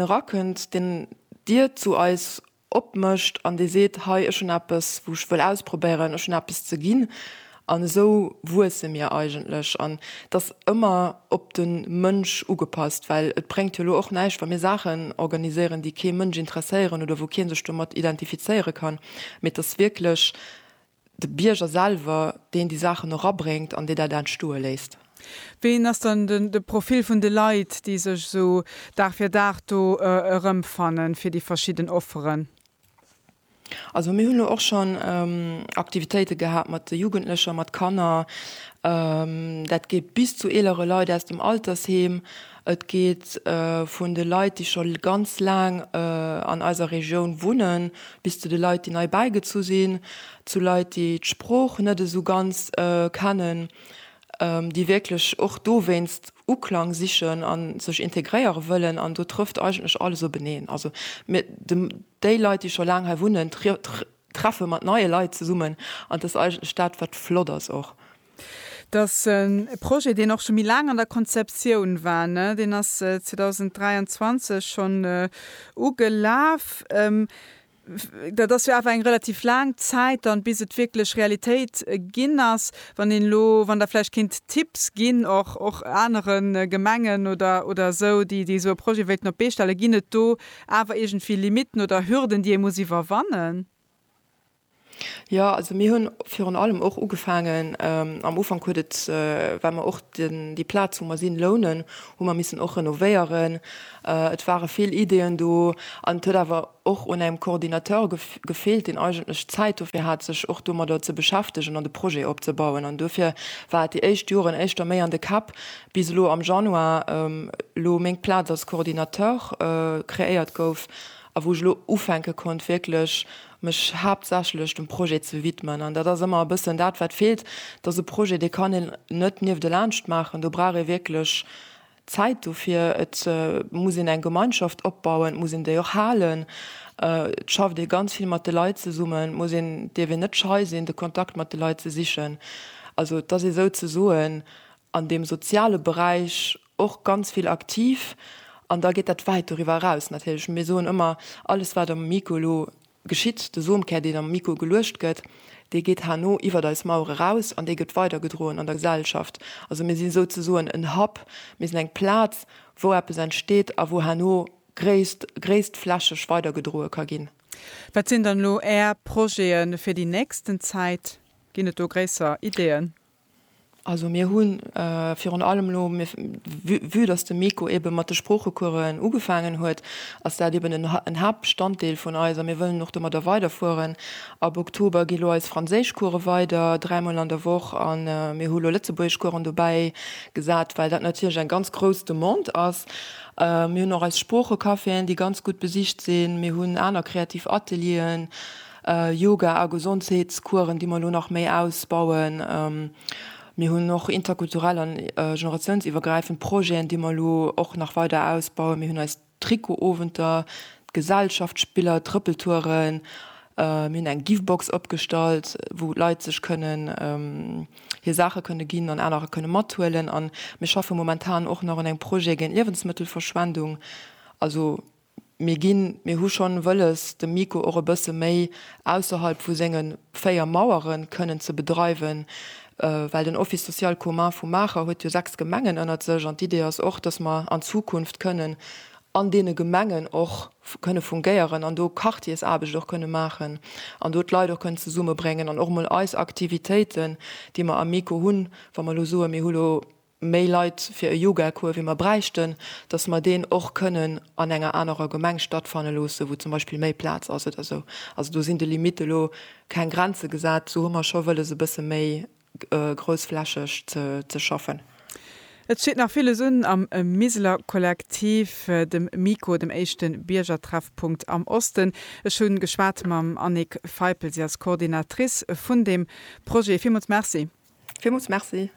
erakënnt, deen d'Dier zu eis opmécht an dee seet, hei ech hunn eppes wou ech wëll ausprobéieren, ech hunn eppes ze ginn. An esou wuesse mir eigentlech an et ass ëmmer op de Mënsch ugepasst, well et bréngt jo elo och näischt wa mir Saachen organiséieren déi kee Mënsch interesséieren oder wou kee sech domat identifizéiere kann, mee et ass wierklech de Bierger selwer, deen déi Saachen erabréngt an dee dat entstoe léisst. Ween ass dann de Profil vun de Leit, déi sech esou Dag fir Dag do erëmfannen, fir déi verschidden Offeren? Also mir hunn elo och schonn Aktivitéite gehat mat de Jugendlecher, mat Kanner. Dat geet bis zu eelere Leit aus dem Altersheem. Et geet vun de Leit, déi scho ganz laang an eiser Regioun wunnen, bis zu de Leit, déi nei bäigezu sinn, zu Leit, déi d'Sprooch net esou ganz kennen, déi wierklech och dowéinst Uklang sichen a sech integréiere wëllen. An do trëfft eigentlech alles openeen. Also mir, déi Leit, déi scho laang hei wunnen, treffe mat neie Leit zesummen an dat ass eigentlech dat, wat flott ass och. Dass en Projet, deen och scho méi laang an der Konzeptioun war, ne, deen ass 2023 schonn ugelaf, dat ass jo awer eng relativ laang Zäit dann, bis et wierklech Realitéit ginn ass. Wann een elo, wann Der vläicht kinnt Tipps ginn, och, och anere Gemengen oder, oder esou, déi, déi esou e Projet wéilten op d'Bee stellen, ginn et do awer iergendwéi Limitten oder Hürden, déi ee muss iwwerwannen? Jo, also mir hunn virun allem och ugefaangen, am Ufank huet et, well mer och den, déi Plaz wou mer sinn, lounen, hu mer missen och renovéieren. Et ware vill Ideeën do an et huet awer och un engem Coordinateur gefeelt, deen eigentlech Zäit dofir hat, sech och domadder ze beschäftegen an de Projet opzebauen. An dofir war et déi éischt Joren éischter méi an de Käpp, bis elo am Januar elo meng Plaz als Coordinateur kreéiert gouf a wou ech elo ufänke konnt wierklech mech haaptsächlech dem Projet ze widmen an dat ass ëmmer e bëssen dat wat feelt, dass e Projet dee kann een net nieft elaanscht maachen, do brauch ee wierklech Zäit dofir, et muss een eng Gemeinschaft opbauen, et muss een déi och halen, et schafft ee ganz vill mat de Leit zesummen, et muss een, dierf een net schei sinn de Kontakt mat de Leit ze sichen, also et ass ee souzesoen an deem soziale Beräich. Och ganz vill aktiv an da geet dat wäit doriwwer eraus natierlech. Mir soen ëmmer, alles wat am Miko elo geschitt, de Somkär deen am Miko geluecht gëtt, dee geet herno iwwert eis Mauere raus an dee gëtt weidergedroen an der Gesellschaft. Also mir si souzesoen en Hub, mir sinn eng Plaz wou eppes entsteet a wou herno gréisst gréisstflächeg weidergedroe ka ginn. Wat sinn dann elo Är Projete fir déi nächsten Zäit? Ginn et do gréisser Ideeën? Also mir hu virun allem elo, vue dass de Miko eebe mat de Sproochecoursen ugefaangen huet, ass dat eeben en Haaptbestanddeel vun eis a mir wëllen och domadder weiderfueren. Ab Oktober gi lo eis Franséischcourse weider, dräi Mol an der Woch, a mir hu lo Lëtzebuergeschcoursen dobäi gesat, well dat natierlech eng ganz grouss Demande ass. Mir hunn och eis Sproochecaféen, déi ganz gutt besicht sinn. Mir hunn aner kreativ Atelieren. Yoga a Gesondheetskueren, déi mer elo nach méi ausbauen. Mir hunn och interkulturell an generatiounsiwwergräifend Projeten, déi mer elo och nach weider ausbauen. Mir hunn eis Trikotowenter, d'Gesellschaftsspiller, d'Trëppeltouren. Mir hunn eng Givebox opgestallt, wou d'Leit sech kënnen hir Saache kënne ginn an anerer kënne mathuelen. A mir schaffe momentan och nach un engem Projet géint Liewensmëttelverschwendung. Also Mir ginn, mir hu schonn wëlles, de Miko och e bësse méi ausserhalb vu senge véier Mauere kënnen ze bedreiwen, well den Office social commun vu Maacher huet jo sechs Gemengen ënnert sech. An d'Idee ass och, dass mer an Zukunft kënnen an deene Gemengen och kënne fungéieren an do Quartiersaarbecht och kënne maachen an do d'Leit och kënnen zesummebréngen an och emol eis Aktivitéiten, déi mer am Miko hunn, wa mer elo soen, mir hu elo, méi Leit fir e Yogacours wéi mer bräichten, datt mer deen och kënnen an enger anerer Gemeng stattfanne loosse wou zum Beispill méi Plaz ass oder esou. Also do sinn de Limitte lo keng Grenze gesat. Sou hu mer scho wëlles e bësse méi groussflächeg ze schaffen. Et steet nach villes un am Miseler Kollektiv, dem MiKo, dem éischte Biergertreffpunkt am Osten. Ech hu geschwat mam Annick Feipel, si ass Coordinatrice vun deem Projet. Villmools Merci. Villmools Merci.